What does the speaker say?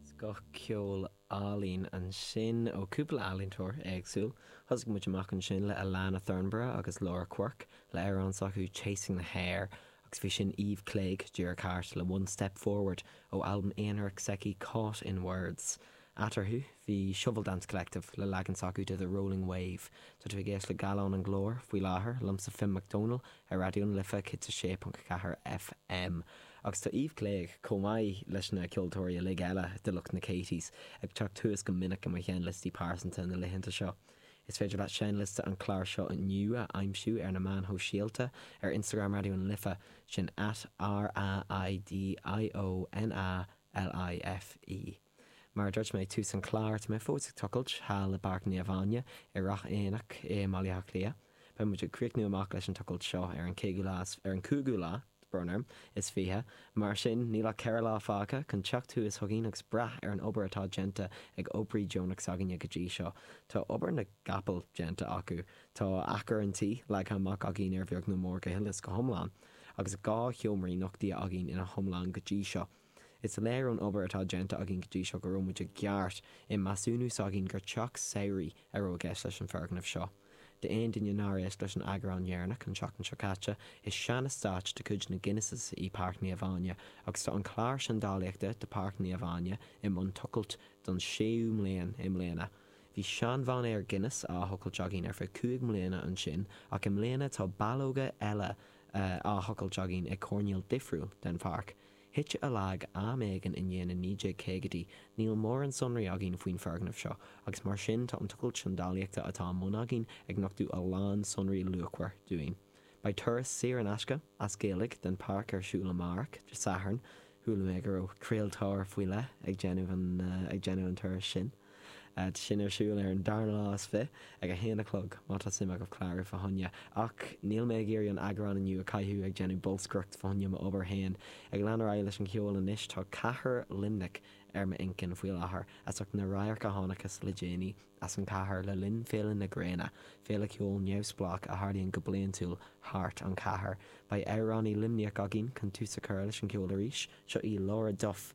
Scoth ceoil álainn ansin ó chúpla ealaíontóir éagsúil. Thosaigh muid amach ansin le Alannah Thornburgh agus Laura Quirke le amhrán s'acu 'Chasing the Hare' agus bhí sin Eve Clague díreach thart le 'One Step Forward' ó albam aonarach s'aici 'Caught in Words'. Eatarthu, bhí Shovel Dance Collective le leagan s'acu de The Rolling Wave. Tá tú ag éisteacht le Gallán an Ghlóir faoi láthair, liomsa Finn Mac Dónaill ar Raidió na Life 106.4 FM. Agus tá Eve Clague, chomh maith leis na ceoltóirí uilig eile de lucht na Katies, ag teacht thuas go minic i mo sheinnliostaí pearsanta na laethanta seo. Is féidir leat seinnliosta an chláir seo inniu a aimsiú ar na meáin shóisialta, ar Instagram Raidió na Life, sin at RAIDIO NA LIFE. Mar a dúirt mé ag tús an chláir, tá mé fós ag tochailt thall i bPáirc Naomh Áine i Ráth Eanaigh i mBaile Átha Cliath. Beidh muid ag críochnú amach leis an tochailt seo ar an cúigiú lá, brón orm, is fiche, mar sin níl ach ceithre lá fágtha chun teacht thuas chugainn agus breathnú ar an obair atá déanta ag oibrithe deonacha s'againne go dtí seo. Tá obair na gcapall déanta acu, tá achar an tí leagtha amach againn ar bheag nó mór go huile is go hiomlán, agus dhá sheomraí nochtaithe againn ina hiomlán go dtí seo. Is léir ón obair atá déanta againn go dtí seo go raibh muid ceart i measúnú s'againn gur teach samhraidh a raibh i gceist leis an bhfoirgneamh seo. D'aon duine nár éist leis an eagrán dheireanach an tseachtain seo caite, is seaneastát de chuid na Guinnesses í Páirc Naomh Áine agus tá an clár seandálaíochta de Páirc Naomh Áine i mbun tochailt don séú mbliain i mbliana. Bhí sean-mhainéar Guinness á thochailt againn ar feadh cúig mbliana ansin ach i mbliana tá ballóga eile á thochailt againn ag coirnéal difriúil den pháirc. Thit sé i léig am éigin i ndiaidh na 1950idí, níl mórán sonraí againn faoin foirgneamh seo, agus mar sin tá an tochailt seandálaíochta atá i mbun againn ag nochtú a lán sonraí luachmhar dúinn. Beidh turas saor in aisce, as Gaeilge, den pháirc ar siúl amárach, Dé Sathairn. Chuala mé go raibh craoltóir faoi leith ag déanamh an turais sin. Beidh sin ar siúl ar an darna lá is fiche, ag a haon a chlog. Má tá suim agaibh clárú fána choinne. Ach níl mé ag iarraidh an eagrán inniu a caitheamh ag déanamh bolscaireacht fa choinne mo obair féin. Ag leanúint ar aghaidh leis an cheol anois, tá cathair Luimnigh ar m'inchinn faoi láthair, as ucht na radhairc a chonacthas le déanaí as an chathair le linn Féile na Gréine, féile ceoil neamhspleách a tharlaíonn go bliaintiúil thart ar an chathair. Beidh amhránaí Luimneach againn chun tús a chur leis an cheol arís, seo í Laura Duff